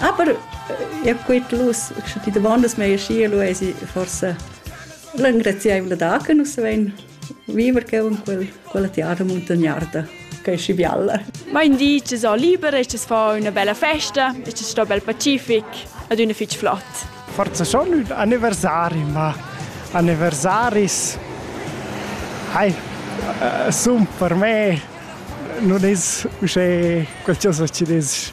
Aber ja gut los, die davandas mei schi lu esi forse l'engraziaivla da che nus vein viver che un quel quella tiara muntagnarda che si bialla. Mein di che so liber ist es fa una bella festa, ist es sto bel pacific ad una fitch flott. Forse schon un anniversari, ma anniversaris hai uh, sun per me non es uschè qualcosa ci des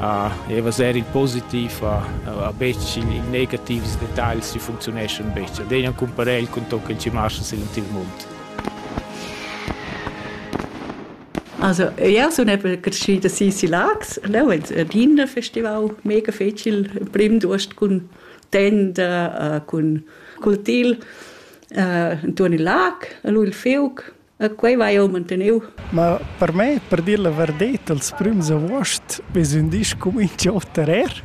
uh, e vaser il positiv a, a, a betg il, il negativs detagls che funzioneschan betg. Ad ein cumparel con ton che ci marcha sil il mund. Also ja, so eben geschieden sie sie lags, no, et Wiener Festival mega fecil prim durst cun tenda, uh, cun cultil, uh, in turn il lag, a lui il fiuc, E quei vai jeu manteniu. Ma per me, per dir la verdet, els prüms avuost vezun disch cumincio oter er.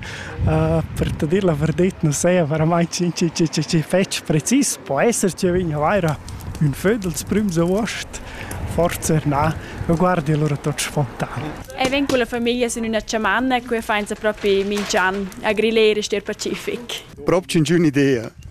Uh, per te dir la verdet non saja verament chi, chi, chi, chi, chi fetg precis. Po esser che vegna vaira ün föd els prüms avuost, forse na, ma guardi allora tot spontan. E ven con la famiglia in una chamanna e qui fainza propi mingian a grillere ster pacific. Proprio un'idea.